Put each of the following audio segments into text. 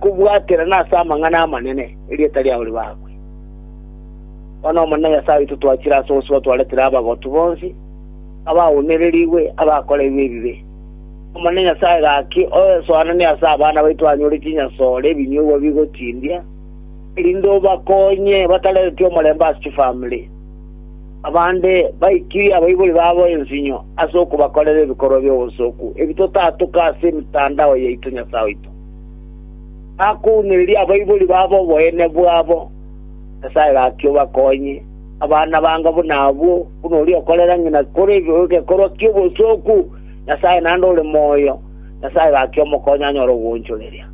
Kobwaterana ase amang'ana amanene, erieta riao ribakwe. Bono Omonene Nyasae oito twachire ase osibo twaretire abagotu bonsi, abaunererigwe, abakoreirwe ebibe. Omonene Nyasae, gaki oesoananie ase abana baito anyore chinyasore ebinyugwa bigotindia, erinde obakonye batareretie omorembe ase chifamiri. Abande baikirie abaibori babo ensinyo ase okobakorera ebikorwa bi'obosooku, ebi totatoka ase emetandao yaito Nyasae oito. Bakounoririe abaibori babo oboyene bwabo, Nyasae gaki obakonye. Abana banga buna abwo, buna oria okorera ng'ina kore egekorwa ki'obosooku, Nyasae naende ore moyo, Nyasae gaki omokonye anyore ogoonchoreria.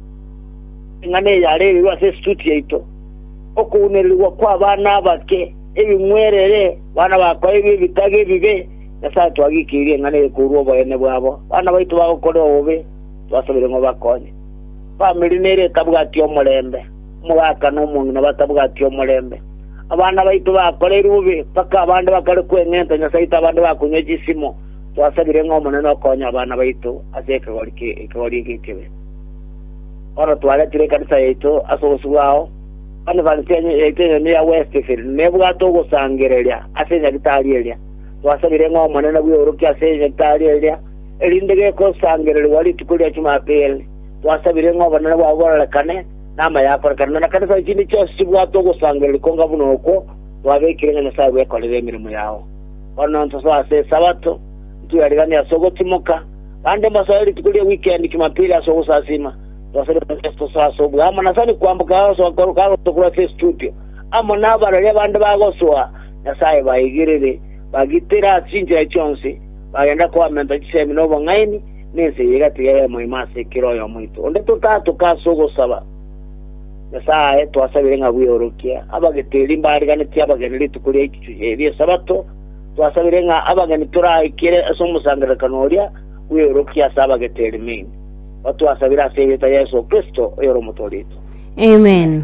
Eng'ana eye yarerirwe ase esituti yaito, Okounererigwa kw'abana abake, ebing'werere, bana bakoeirwe ebitaga ebibe, Nyasae twagikeirie eng'ana eye korwa oboyene bwabo, bana baito bagokorera obobe, Twasabire ng'a obakonye. Famiri nere etabwati omorembe, omogaka na omong'ina batabwati omorembe. Abana baito bakoreirwe bobe, mpaka abande bakare kweng'enta Nyasaito abande bakonywa chisimo. Twasabire ng'a Omonene okonye abana baito ase ekegori ekegori eke ekebe. Bono twaretire ekanisa yaito ase obosio bwao, Conference yaito enyene ya Westfield nebwate ogosangereria ase enyagitari eria. Twasabire ng'a Omonene bweorokie ase enyagitari eria, Erinde gekosangererigwa rituko ria Chumapili, twasabire ng'a obonene bwao bororekane, na amaya akorekane, na nekanisa chinde chionsi chibwate ogosangereria konga buna okwo twabekire ng'a Nyasae bwekorere emeremo yao. Bono ntosoe ase Esabato, ntweriganie ase ogotimoka, bande mbasoe rituko ria wikendi, Chumapili, ase ogosasiima. Twasabire ng'a Yeso tosoe ase obuya amo na sani kwamboka agosoa korwa kagosoa korwa ase estudio, amo nabararia bande bagosoa, Nyasae baigirere, bagitere ase chinchera chionsi, bagenda koamenta chisemi nobong'aini, na ense eye egatiga yaima ime ase kera oyomo oito. Onde totatoka ase ogosaba Nyasae aye twasabire ng'a bweorokie abagete erio mbariganetie abageni rituko ria Ichuchu ri'Esabato, twasabire ng'a abageni toraikere ase omosangererekano oria bweorokie ase abagete erio main. Batwasabire ase erieta ria Yeso Kristo, oyore Omotoori oito. Amen.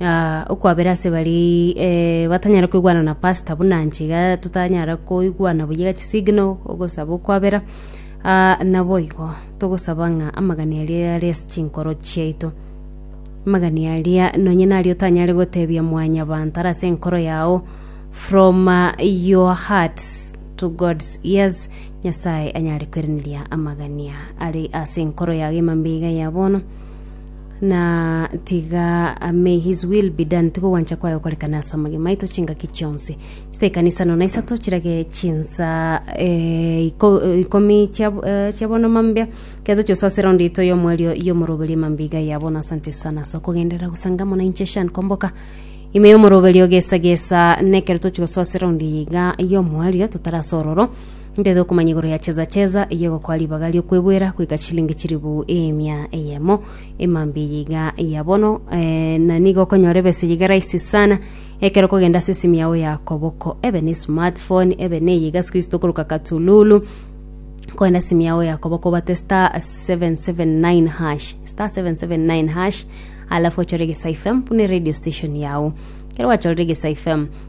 Ah, okwabera ase baria eh, batanyara koigwana na pastor buna nche iga totanyara koigwana buya iga chisignal ogosaba okwabera ah, naboigo togosaba ng'a amagani aria are ase chinkoro chiaito amagani aria nonye nari otanyare gotebia mwanyabanto are ase enkoro yao from uh, your heart to god's ears nyasaye anyare koiraneria amagania are ase enkoro yago emambe iga ya bono na tiga may his will be done tiga ogwancha kwaye gokorekane ase amagima aito chingaki chionsi chita ekana isano na isato chirage chinsa eh, iko- eh, ikomi chia eh, chia bono mambia kere toche gosoa ase eraundi yaito y'omwerio y'omoroberio mambia iga ya bono asante sana ase okogenderera gosanga mono inche shan komboka ime y'omoroberio gesa gesa nekero toche gosoa ase eraundi eye iga y'omwerio totarasororo Ndete okomanya igoro ya chesa chesa eyio egokoa ribaga ri'okwegwera goika chilingi chilifu emia eyemo. Emambia eye iga ya bono eh, na nigo okonyora ebesa eyio iga rahisi sana ekero okogenda ase esimu yao ya koboko ebe ne smartphone ebe neye iga siku ici tokoroka katululu kogenda simu yao ya koboko obate star 779 hash star 779 hash alafu ochore gesa fm buna radio station yao kero gwachorire gesa fm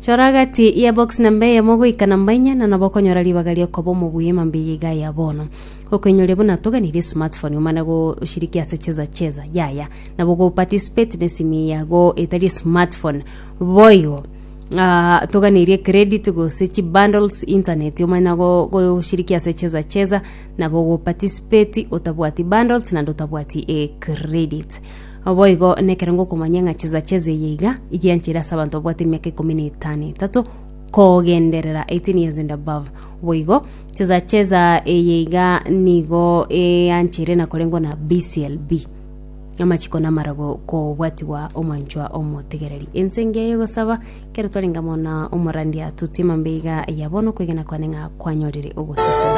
Chora agati y'ebox namba eyemo goika namba inye na nabo okonyora ribaga ri'okoba omobuya ime mbiya iga ya bono. Okoinyoria buna toganirie smartphone omane goshiriki ase cheza cheza yaya nabo go participate n'esimi ya go etari smartphone boigo Ah, toganirie credit gose chi bundles internet omanye nago goshiriki ase cheza cheza nabo go participate otabwati bundles naende otabwati eh, credit Naboigo nekerango okomanya ng'a chisacha eze eye iga igiancheire ase abanto babwate emiaka ikomi na etano etato kogenderera 18 years and above boigo chisacha eza eye iga nigo eancheire na korengwa na BCLB amachiko namarago kobwatigwa omwanchwa omotegereri ense engiya yogosaba kero twarenge amo na omorandia totie mambia iga ya bono okwegena kwane ng'a kwanyorire ogosesenia